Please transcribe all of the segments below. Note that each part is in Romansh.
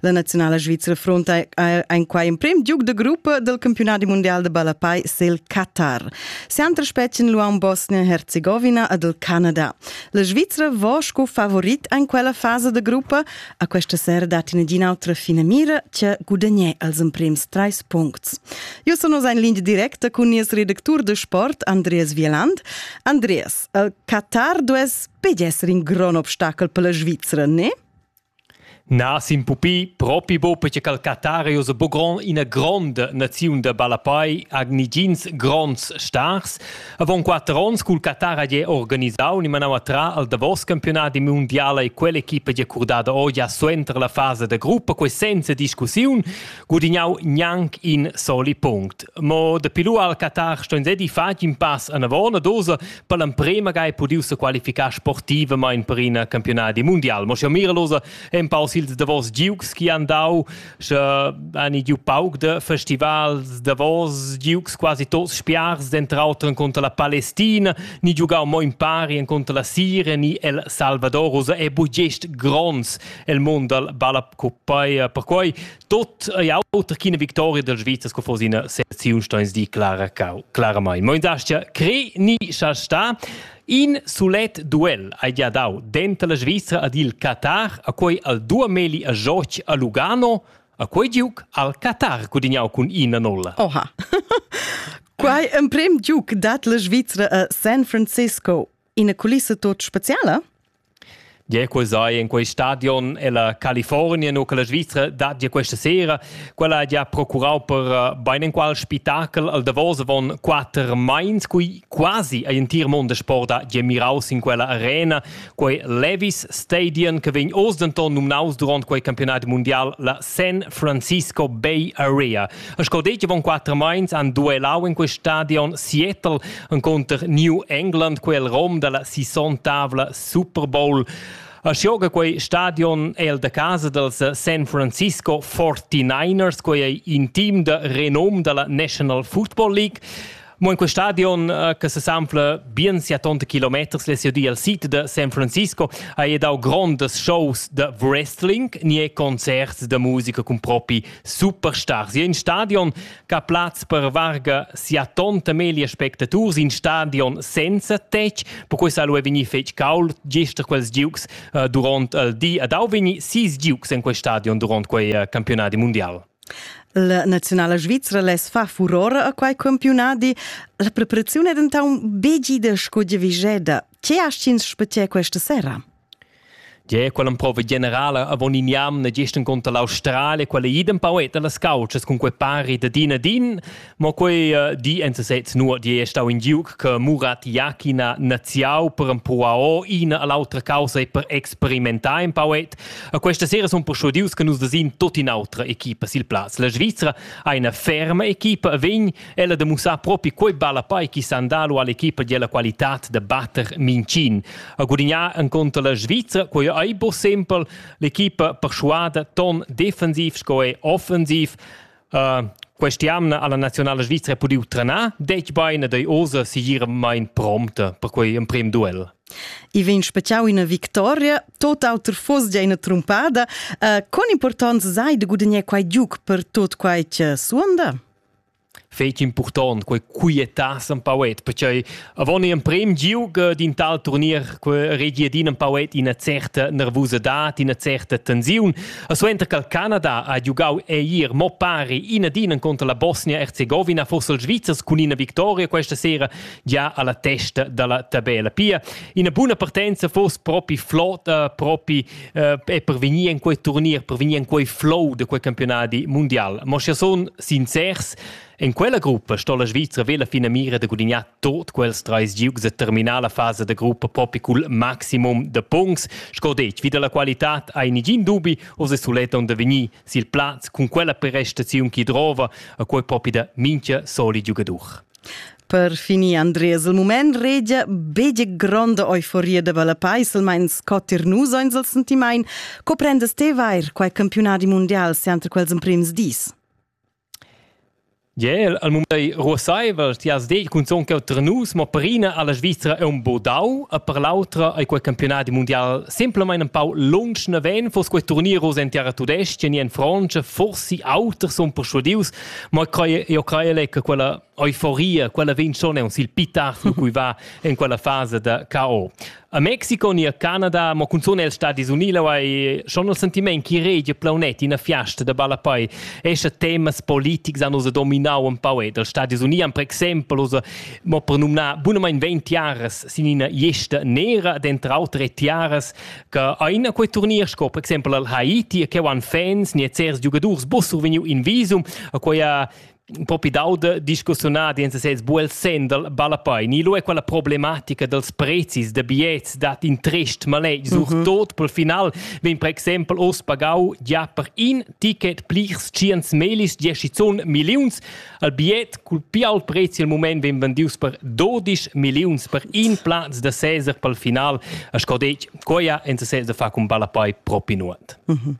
La naziunala svizra fronta ein quai emprim giug de gruppa del campionadi mundial de ballapai sil Qatar. Sempre spetschen luan Bosnien-Herzegovina ad el Canada. La Svizra vo sco favorit ein quella fase de gruppa. A questa sera dat in autra fine mira che gudagnè als emprims treis puncts. Io sono in linea directa con il redactur de sport Andreas Wieland. Andreas, il Qatar dues pedi essere in gran obstacol per la Svizra, ne? Na, sin pupi, propi buca perche ch'al Qatar ei ussa buc gron ina gronda naziun da ballapei, ha negins gronds stars. Avon quater onns cul Qatar ha gie organisau ni manau a trar al davos campiunadi mundial ei quell'equipa gia curdada oz gia suenter la fasa da gruppa, quei senza discussiun, gudignau gnanc in soli punct. Mo dapi lu al Qatar sto ins edi fatg in pass anavon ad ussa per l'emprema ga è pudiu se qualificar sportivamain per in campionadi mundial. Mo sche Miralosa empau sils davos giugs chi han dau, sche han giu pauc de festivals davos giugs quasi tots spiars, dentro auter contra la Palestina, ni giugau mo in pari contra la Sire ni el Salvador, e bu gest gronds el mond dal balla per quei Tot ei auter ch'ina victoria dal Svizra sco fosse ina seziun steins di Clara Cau. Claramain. Mo indastia cre ni scha sta in sulet duel hai gia dau denter la Svizra ed il Qatar a quei al Duameli a Joch a Lugano a quei giuc al Qatar gudignau cun ina nolla. Oha. Quai emprem giuc dat la Svizra a San Francisco ina culissa tot speciala? Gia quei sai in quei stadion ella California nu che la Svizra dat gia questa sera. Quella ha gia procurau per eh, bein en qual spettakel al Davos avon quater meins, cui quasi ein tir monde sport ha gia miraus in quella arena, quei Levis Stadium che vegn oz denton numnaus durant quei campionat mundial la San Francisco Bay Area. Sco detg von quattro meins han duellau in quest stadion Seattle encounter New England quel rom dalla sissontavla Super Bowl. Als gioga quei stadion è el da casa dels San Francisco 49ers, quei ei in team da renom dalla National Football League. Mo in quel stadion eh, che sesanfla bien sia tonta kilometers le di al sito de San Francisco ha dau grondas shows de wrestling ni e concerts de musica con propi superstars. In stadion che ha plaz per varga sia tonta meglio spectators in stadion senza tec, per cui sa lu vegni fetg caul gestr quels giugs eh, duront il di ad au vegni sis giugs in quel stadion duront quei eh, campionati mondial. La naziunala svizra less far furor a quai campiunadi. La preparaziun è dentant begida sco diviseda. Ce hast ins spetgè questa sera? Tge quella un po' generala avon in jam ne gestern contra l'Australia, quella idem pau eta las couchas con quei pari da din a din, Mo quei uh, di en sesez nu di è stau in giuc che Murat Iachina naziau per empau ina all'autra causa e per experimentar in pauet. A questa sera sun persuadius che nus desin tot in autra equipa sil plaz. La Svizzera ha una ferma equipa vegn ella de mussar propi quei balla pai chi sandalu all'equipa della qualità de batter Mincin. A gudignar en conto la Svizzera, quei ei bo sempel l'equipa persuada ton defensiv sco e offensiv. Uh, Quest'jamna ha la nazionala svizra pudiu trenar detg bein ed ei oza segiramain prompta per quei emprem duel. I vegn speciau ina victoria, tot auter foss gia ina trumpada. Uh, con importanza sai de gudagnare quei giuc per tot quei che suonda? fetg important quei quietas empauet perché Avon emprem giug d'in tal turnier que regi ad in empauet ina certa nervusadad, ina certa tensiun. A suenter che Canada ha giugau eier mo pari ina din contro la Bosnia-Herzegovina, forse il Svizzers cun ina victoria questa sera già alla testa dalla tabella. Pia ina buna partenza fosse propi flot, uh, propi uh, e per vegnir in quei turnier, per vegnir in quei flow de quei campionati mondial. Ma sche son sincers, En quella gruppa sto la Svizra vela finamira da gudignar tot quels treis giugs da terminala fasa da gruppa propi cul maximum de punts, sco detg, vi dalla qualità hai nigin dubi, oz è sulet onde vegnir sil plaz cun quella prestaziun chi drova a quei propi da mincha soli giugadur. Per finir, Andreas, il moment regia bege gronda euforia da Valapais, almain sco tir nus ans al sentimain. Co prendes te vair quai campionadi mundial sempre quels emprims dis? Jel, al mund ei ruasseivel, ti has detg cunzun cheu tra nus, mo per ina ha la Svizra aunc buc dau e per l'autra ei quei campionadi mundial semplamein empau lunsch naven, fuss quei turnier oz en terra tudestga ni en Frontscha, forsi auters sun perschudius, mo io crei che quella euforia, quella vegn schon aunc sil pli tard lu cui va en quella fasa da KO. A Mexico ni a Canada, mo cunzun els Stadis Uni laua e schon il sentiment chi regia plaunet ina fiasta da ballapei escha temas politics han osa dominau un pau ed els Stadis Uni han per exempel osa mo per numnar bunamein 20 jares sin ina gesta nera ed entre auter e tiaras che ein a quei turnier sco per exempel al Haiti che han fans ni e cers giugadurs bussur vegniu in visum a quei un po' più d'auto discussiunati in sesez buel sendel ballapoi ni lo è quella problematica dels prezis de biets dat in trist maletg sur mhm. tot pel final vegn per exempel ost pagau ja per in ticket plirs ciens melis dieschizun milliuns al biet cul più alt prezz il moment vegn vendius per 12 milliuns per in platz de Cesar pel final a scodec quoia in sesez de fa cun ballapoi propi nuot mhm.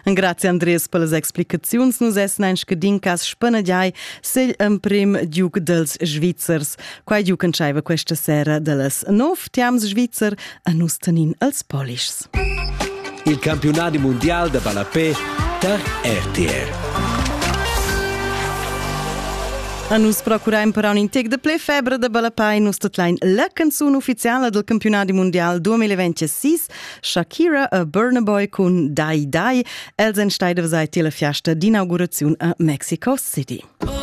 Grazie Andres per las explicaziuns nus essen ein scadincas spanagiai segl emprim duc dels Svizzers. Quai duc entscheiva questa sera dallas nov tiams Svizzer a nus tanin als polischs. Il campionat mondial da ballapé tar RTR. A nus procuraim per un intec de ple febre de balapai nus totlain la canzun ufficiala del campionat mundial 2026 Shakira e Burna Boy cun Dai Dai. Els en steidevs ai tila fiasta d'inauguraziun a Mexico City. Oh,